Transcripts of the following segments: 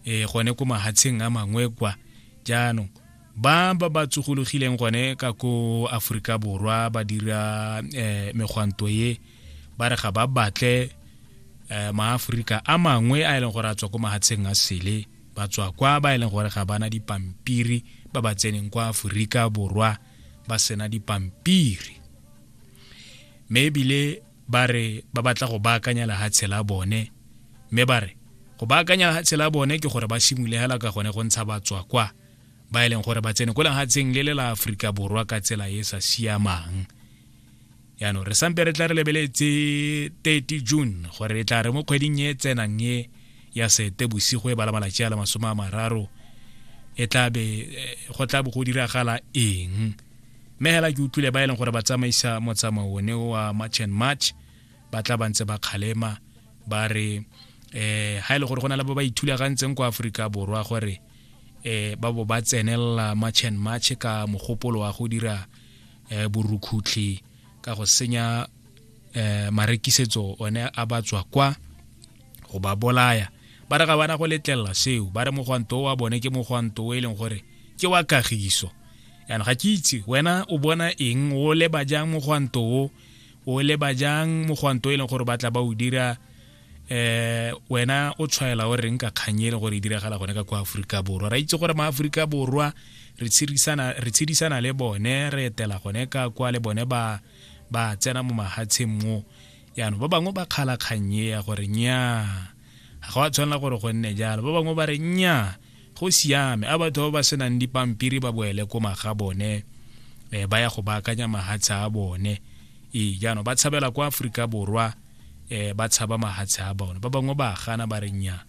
e gone ko mahatsheng a mangwe kwa jaanong ba ba ba tsogologileng gone ka ko aforika borwa ba dira um megwanto ye ba re ga ba batle um maaforika a mangwe a e leng gore a tswa ko mahatsheng a sele ba tswa kwa ba e leng gore ga bana dipampiri ba ba tseneng kwa aforika borwa ba sena dipampiri mme ebile ba re ba batla go baakanya lehatshe la bone mme ba re go baakanya lehatshe la bone ke gore ba simole hela ka gone go ntsha batswa kwa ba e leng gore ba tsene ko lehatsheng le le la aforika borwa ka tsela e e sa siamang yaanong re sampe re tla re lebeletse 30 june gore re tla re mo kgweding e tsenang e ya sete bosigo e bala malatsi a le masome a mararo e tlabe eh, go tla bo go diragala eng mme hela ke utlwile ba e leng gore ba tsamaisa motsamao one wa march and march ba tla ba ntse ba kgalema ba re eh ha ile e gore go na le ba ba ithulagantseng kwa Afrika borwa gore eh ba bo ba tsenelela march and march ka mogopolo wa go dira eh borukhutlhi ka go senya eh marekisetso one a ba tswa kwa go ba bolaya ba re ga bana go letlelela seo ba re mogwanto wa bone ke mogwanto o e leng gore ke wa kagiso yana ga ke itse wena o bona eng o leba jang mogwanto o o leba jang mogwanto e leng gore ba tla ba o dira eh wena o tshwaela o reng ka kganye e leng gore e diragala gone ka kwa aforika borwa ra itse gore maaforika borwa re tshedisana le bone re etela gone ka kwa le bone ba ba tsena mo mahatsheng mo yaanong ba bangwe ba kgala kgang e ya gore nyaa ga go a tshwanela gore go nne jalo ba bangwe ba re nyaa go siame a batho ba ba senang dipampiri ba boele ko maga bone um ba ya go baakanya mahatshe a bone ee jaanong ba tshabela kwa aforika borwa um ba tshaba mahatshe a bone ba bangwe ba gana ba re nyaa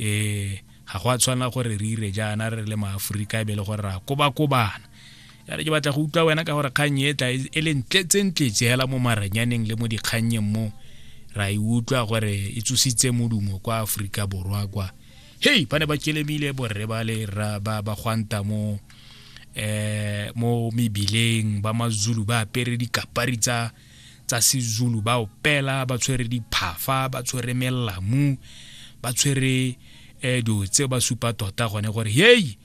um ga go a tshwanela gore re ire jaana re le maaforika e be le gore re a kobakobana ya re ke batla go utlwa wena ka gore kgang e tla e le ntletsentle jela mo maranyaneng le mo dikgannyeng mo ra e utlwa gore e tsositse modumo kwa aforika borwa kwa hei ba ne ba kelemile borre ba le ba gwanta mo eh mo mebileng ba mazulu ba apere dikapari tsa tsa sezulu ba opela ba tshwere diphafa ba tshwere melamu ba tshwere eh dilo tse ba supa tota gone gore hei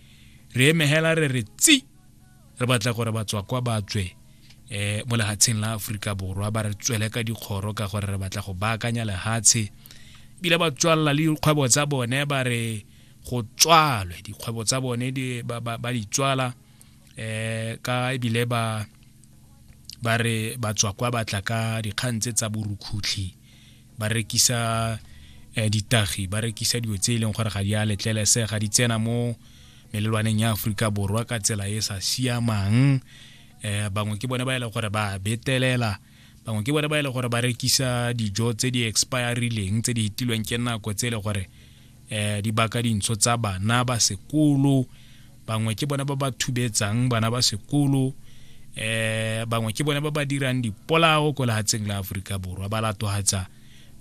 re emegela re re tsi re batla gore batswa kwa ba tswe um mo lehatsheng la aforika borwa ba re tswele ka dikgoro ka gore re batla go baakanya lehatshe ebile ba tswalela le dikgwebo tsa bone ba re go tswalwe dikgwebo tsa bone ba di tswala um ka ebile ba ba re batswa kwa batla ka dikgang tse tsa borukhutlhi ba rekisa eh, ditagi ba rekisa dilo tse e leng gore ga di a letlelese ga di tsena mo melelwaneng ya aforika borwa ka tsela e sa siamang eh bangwe ke bone ba e leng gore ba betelela bangwe ke bone ba e leng gore ba rekisa dijo tse di expirileng tse di hitilweng ke nako tse e leng gore eh, di baka dintsho tsa bana ba sekolo bangwe ke bone ba ba thubetsang bana ba sekolo eh bangwe ke bone ba ba dirang dipolao ko lehatsheng la aforika borwa ba latogatsa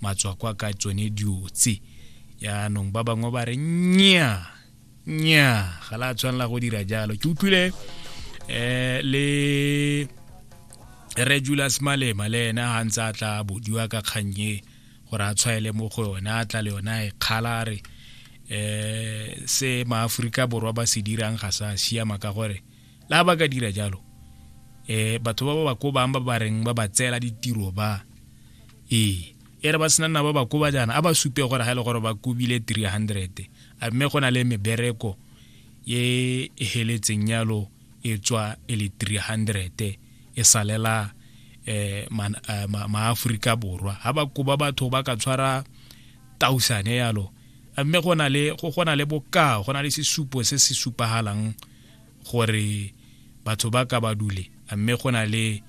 matswakwa ka tsone diotse yaanong ba bangwe ba re nya nya ga la tshwanela go dira jalo ke utlwile eh le regulus malema le ena ga ntse a tla bodiwa ka kgannye gore a tshwaele mo go yone a tla le yone a e kgala a re um se maaforika borwa ba se dirang ga sa siama ka gore la ba ka dira jalo um batho ba ba ba ko bang ba ba reng ba ba tseela ditiro ba ee e re ba sena nna ba ba koba jaana a ba supe gore ga e le gore ba kobile 300 a mme go na le mebereko e e heletseng yalo e tswa e le 300 e salela eh, eh maaforika borwa ga ba koba batho ba ka tshwara tausane yalo mme go na le go gona le bokao go na le sesupo se se supagalang gore batho ba ka ba dule mme go na le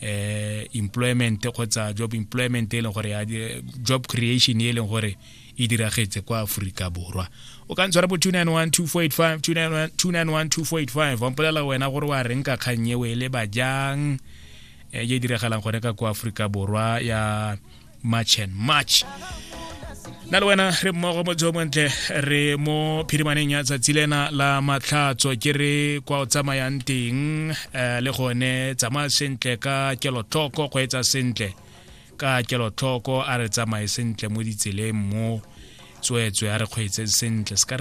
eh employment kgotsa job employment e leng gore ya job creation e leng gore e diragetse kwa aforika borwa o ka ntshwara bo 2912485 wa mpolela wena gore wa reng ka kgang eo e leba jang e e diragalang gone ka kwa aforika borwa ya march and march na le wena re mmogo mo jo montle re mo phirimaneng ya tsatsi lena la matlhatso ke re kwa o tsamayang teng um le gone tsamaya sentle ka kelotlhoko go etsa sentle ka kelotlhoko a re tsamaye sentle mo ditseleng mo tsweetswe a re kgweetseng sentle